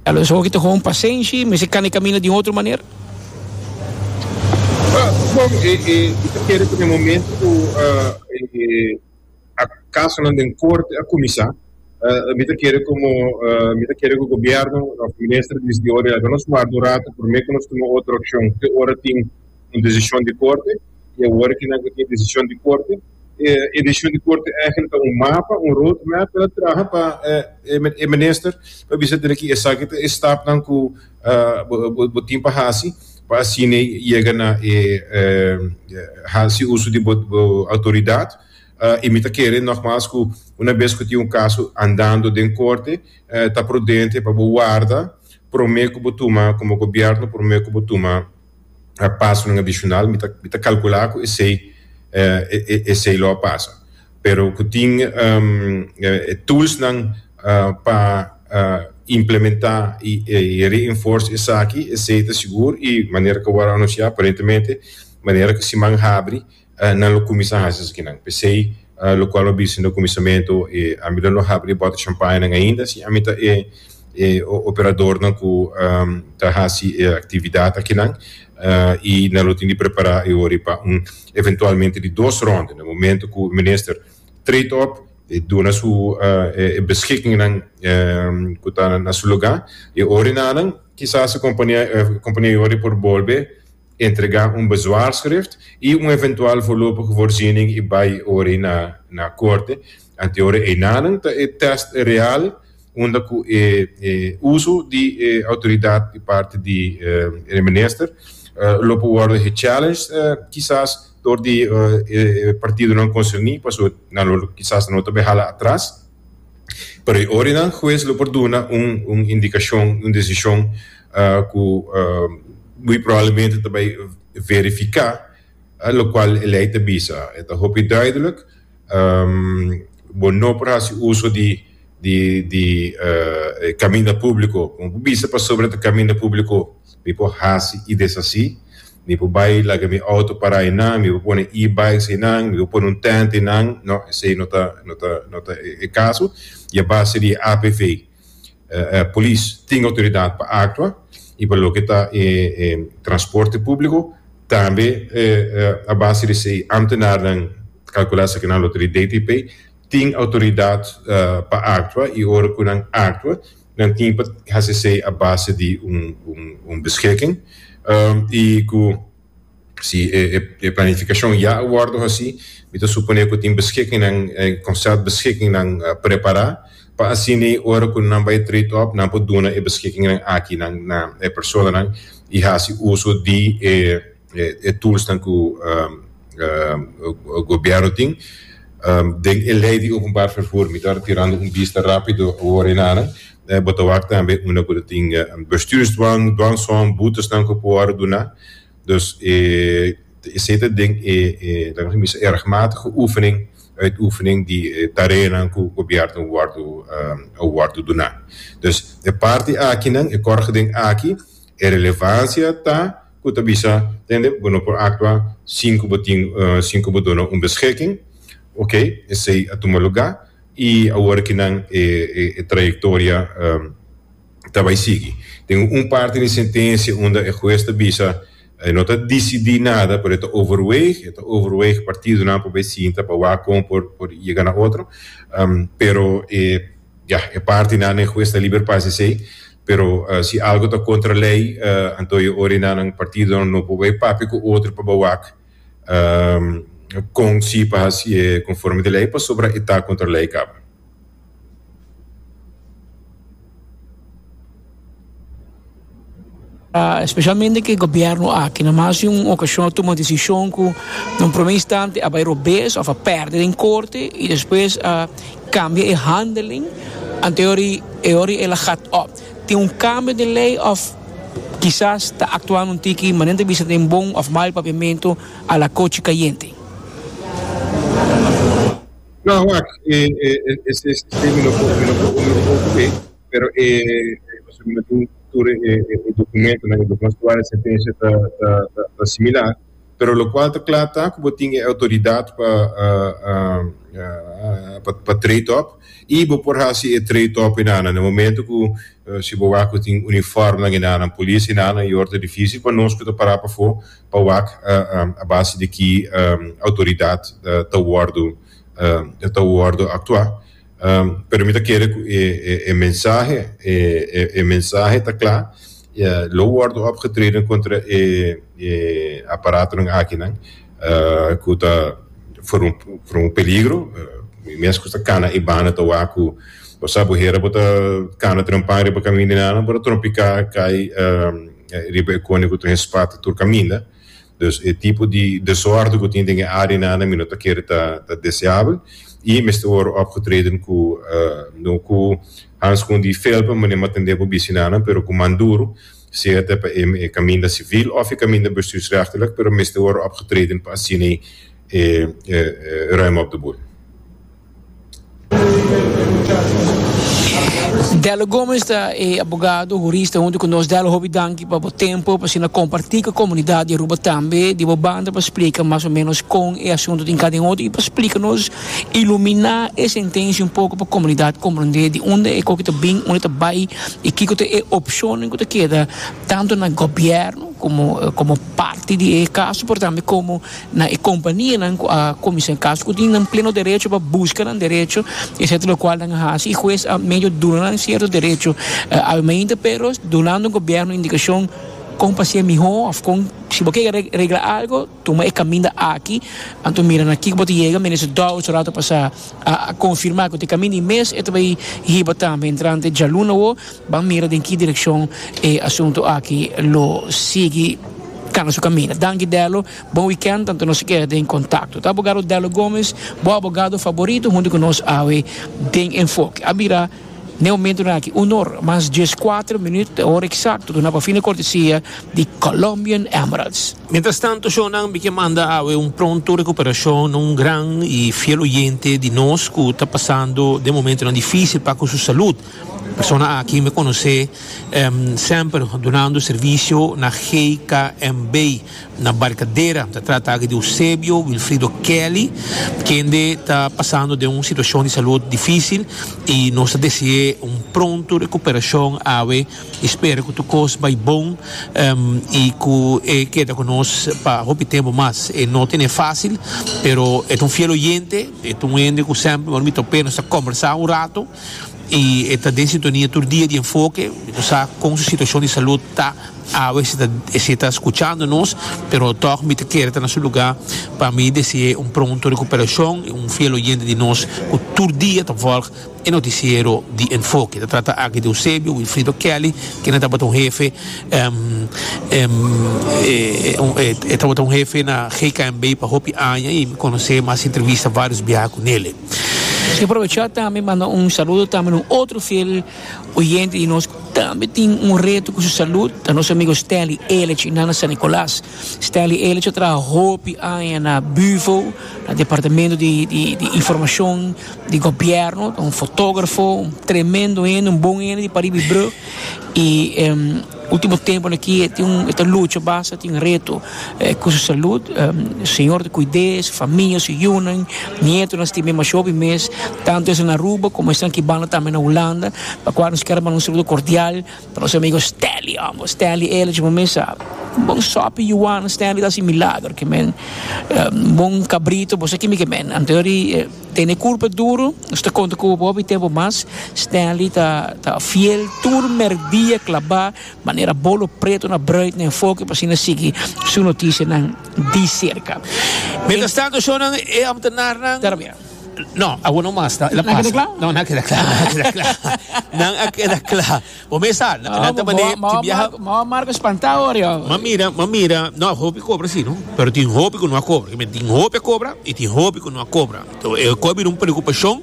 Tal ves hopi ta hopi pasenshi, mester cana e camino di un otro manera. Bon, e ta kere cu den momento cu e casonan den corte a cuminsa, mi ta kere como mi ta kere cu gobierno of minister di District Ori laga nos warda un rato prome cu nos tuma otro accion te ora tin un decision di corte. i e workingnan ku tin e desishon di korte. E desishon di korte ègil ta un mapa, un road map, pa traha pa e minister pa bisa den aki esaki ta e stapnan ku bo tin pa hasi pa asina yega na e hasi uso di bo outoridat. I mi ta kere nògmas ku una bes ku tin un kaso andando den korte ta prudente pa bo warda promé ku bo tuma, komo gobièrnu, promé ku bo tuma a pasonan adishonal mi ta mi ta kalkulá ku esei esei lo a pasa pero ku tin e toolsnan pa implementá i reinforce esaki esei ta sigur i manera ku a wòrdu anunsiá aparentemente manera ku siman habri eh, nan lo kuminsá hasi esakinan. P'esei, eh, lokual bo bisa na kuminsamentu, eh, ami lo no habri e bòtel champañanan ainda, si ami ta e e operadornan ku, ehm, ta hasi e aktividat akinan, eh, i nan lo tin di prepará e hori pa un eventualmente di dos rònde. Na momentu ku minister treed op, e duna su, eh, e beskikingnan, ehm, ku ta na su lugá, e hori nanan kisas e kompania, eh, kompania e hori por bolbe Entrega un bezwaarschrift i un eventual voorlopige voorziening i bai ori na na corte. Anteori einanan ta e test real unda cu e uso di e autoridad di parti di e minister lo por worde gechallenged kisas door di e partidonan concerni pasobra nan lo kisas no ta bay hala atras. Pero e orinan huez lo por duna un indicacion, un decision. cu muy probablemente ta bay verifica, locual e ley ta bisa. E ta hopi duidelijk, bo no por haci uso di di e caminda publico, como bo bisa pasobra ta caminda publico mi por haci y deshaci, mi por bay laga mi auto para eynan, mi por pone e-bikes eynan, mi por pone un tent eynan, no esey no ta no ta e caso y a base di e apv. Polis tin outoridat pa aktua i pa loke ta e transporte públiko. Tambe a base di esei ámtenarnan ta kalkulá esaki nan lo ta di DTP tin outoridat pa aktua i ora ku nan aktua nan tin pa hasi esei a base di un beschiking i ku. Si e planificacion ya a wordo haci, mi ta supone cu tin beschikkingnan, e concept beschikkingnan prepara, pa asina ora cu nan bay trade up nan por duna e beschikkingnan aki na e personanan y haci uso di e toolsnan cu gobierno tin. Den e ley di openbaar vervoer, mi ta tirando un bista rapido awor enana. bo ta wak tambe unda ku ta tin bestuursdwang, dwangsom, boetesnan ku por wòrdu duná. Dus esei ta den e laga mi bisa e regmatige oefening, uitoefening di e tareanan ku gobièrnu wòrdu a wòrdu duná. Dus e parti akinan, e kòrgi den aki, e relevansia ta ku ta bisa, tende, bo no por aktua sin ku bo tin, sin ku bo duna un beschiking, oke, esei a tuma lugá. y awor aki nan e e trayectoria ta bay sigui. Tin un parti di sentencia unda e huez ta bisa e no ta dicidi nada pero e ta overweeg, e ta overweeg partidonan pa bay sinta pa wak con por por yega na otro pero e ya e partinan den huez ta liber pa haci esey pero si algo ta contra ley anto e ora nan partidonan no por bay papia cu otro pa bay wak um con si pa haci e conforme di ley pasobra e ta contra ley caba. Specialmente cu e gobierno aki na mas di un ocasion a tuma decision cu na un prome instante a bay robes of a perde den corte y despues a cambia e handeling anto e ora y e ora y el a gat op. Tin un kambio den lei òf kisas ta aktuando un tiki manera ta bisa den bon òf mal papiamentu a la kochi kayente. Nan wak e ses término ku mi lo por uni un poku ei, pero e pasobra mi no tin tur e dokumentonan i lo konstruá e sentensia ta similar. pero lokual ta kla ta ku bo tin e outoridat pa pa trade up i bo por hasi e trade up ei nan na momento ku si bo wak ku tin uniformnan ei nan polis ei nan yor ta difisil pa nos ku ta para pafo pa wak a base di ki outoridat ta wordu ta wordu aktua. Pero mi ta kere ku e e mensahe, e e e mensahe ta kla, lo wòrdu opgetreden kontra e e aparatonan akinan ku ta for un for un peligro, mi mes ku ta kana e banda ta wak ku bo sa bo hera bo ta kana trompa riba kaminda nan bo ta trompiká kai riba e kone ku ta hespat tur kaminda. Dus e tipo di desorde cu tin den e arenan mi no ta kere ta ta deseabel y mester worde opgetreden cu no cu handschoen di fel pa manera mo tende bo bicinan pero cu man duro sea ta pa e caminda civil of e caminda bestuursrechtelijk pero mester worde opgetreden pa asina ruim op de boel. Delo Gomes ta e abogado hurista hunto cu nos. Delo, hopi danki pa bo tempo, pa asina comparti cu e comunidad di Aruba tambe di bo banda pa splica mas o menos con e asunto tin cada un otro y pa splica nos, ilumina e sentencia un poco pa comunidad comprende di unda e coki ta bin, unda ta bay y kico ta e opcionen cu ta keda tanto na gobierno como parti di e caso pero tambe como na e kompanianan ku a komisa e kaso ku tin nan pleno derecho pa buska nan derecho etcetera lokual nan a hasi i hues a medio duna nan sierto derecho al mainta pero dunando gobierno indikashon kon pa hasia mihó òf kon si bo ke regla algu tuma e kaminda aki anto mira na kiko bo ta yega Minister Dowdson rato pasá a konfirmá ku ta e kaminda i mes e ta bai hiba tambe entrante djaluna awor. Ban mira den ki direkshon e asuntu aki lo sigui kanga su kaminda. Danki Delo, bon wikènt tantu nos a keda den kontakto. Ta abogado Delo Gomez, bo abogado faborito huntu ku nos awe den Enfoke. A bira n'e momentunan aki un onor, mas djes kuater minüt ta e ora eksakto duna pa fina kortesia di Colombian Emeralds. Mientrastantu shownan mi ke manda awe un pronto rekuperashon na un gran i fiel oyente di nos ku ta pasando den momentunan difísil pa ku su salud. Persona aki mi conoce semper dunando servicio na GKMB na Barcadera. Ta trata aki di Eusebio Wilfrido Kelly, kende ta pasando den un situacion di salud dificil y nos ta dese'e un pronto recuperacion awe y spera cu tur cos bay bon y cu e keda cu nos pa hopi tempo mas. E no tene facil pero e ta un fiel oyente, e ta un hende cu semper ora mi top'e nos ta conversa un rato. y e ta den sintonia tur dia di enfoke cu sa con su situacion di salud ta awe ese ta scuchando nos pero tog mi ta kere ta na su lugar pa mi desee un pronto recuperacion y un fiel oyente di nos cu tur dia ta volg e noticiero di enfoke ta trata aki di Eusebio Wilfrido Kelly kende tabata un hefe e tabata un hefe na GKNB pa hopi aña y mi conoce mi haci entrevista varios biaha cu nele. Quiero aprovechar tambe manda un saludo tambe na un otro fiel oyente di nos cu tambe tin un reto cu su salud, ta nos amigo Stanley Elich y nan na San Nicolas. Stanley Elich a traha hopi aña na Bufo, na departamento di di di informacion di gobierno, ta un fotografo, un tremendo hende, un bon hende di pariba y brug y. Ultimo temponan aki e tin un e ta lucha basta tin reto ku su salud señor ta kuid'é su famia su yunan nietonan stiba e masho bi mes tanto esnan na Aruba komo esnan ki banda tambe na Hulanda pa kua nos ker manda un saludo kordial pa nos amigo Stanley homber Stanley Ellis bo mes sa bon sopi yuana Stanley ta hasi milagro kimen bon kabrito bo sa kimi kimen anto di. Tene kurpa duru, nos ta konta ku bobi tempu mas. Stanley ta ta fiel tur merdia klabá manera bolo pretu na bruid na enfoke pa asina sigui su notisianan di serka. Mientras tanto shon nan e ambtenarnan Tera bia. No, awor no mas ta, el a pasa. Nan a keda kla. No, nan a keda kla. Nan a keda kla. Bo mes sa, nan Ah, ta bo- balé, bo- tin biaha. bo- bo- Marco spantá hoor, ja. M'a mira, m'a mira, no a hopi cobra así, no. Pero tin hopi cu no a cobra. Kimen, tin hopi a cobra y tin hopi cu no a cobra. To, e cu a bira un preocupacion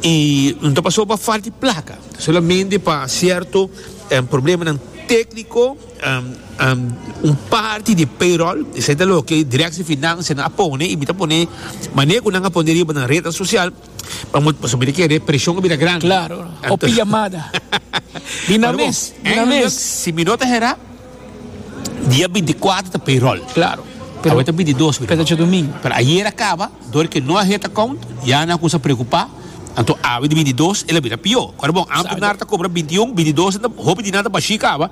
y no ta pasobra pa falta di placa. Ta solamente pa cierto em, problemanan técnico, em, em, un parti di payroll, esei ta loke Directie Financianan a pone y mi ta pone manera cu nan a pone riba nan rednan social. Pa mot pasobra mi ta kere preshon a bira gran. Klaro, o pijamada. Di na mes, di na mes. Si mi no ta hera, dia binti kuater ta payroll. Klaro. Awor ta binti dos, mi hermano. Petacho domingo. Pero ayer a kaba, dor ke no a het akount, ya nan kusa preokupá. Anto awe di binti dos el a bira pió. Kòrda bon, amper nan ta kobra binti un, binti dos, hopi di nan ta bashí kaba.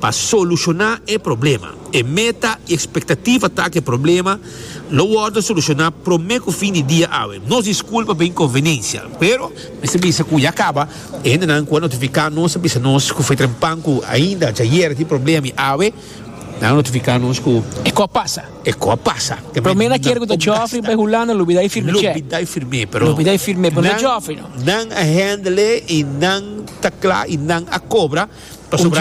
Pa solushoná e problema. E meta i ekspektativa ta ku e problema lo wòrdu solushoná promé ku fin di dia awe. Nos diskulpa pa e inkonvenensia, pero mester bisa ku ya kaba. E hendenan ku a notifiká nos a bisa nos ku fue trempan ku ainda djayer a tin problema i awe nan a notifiká nos ku e kò a pasa. E kò a pasa. Promé na kier ku ta djòfri pa e Hulanda lo bidai firmé chèk. Lo bidai firmé, pero lo bidai firmé, pero no djòfri no. Nan a hèndele i nan ta kla i nan a kobra pasobra.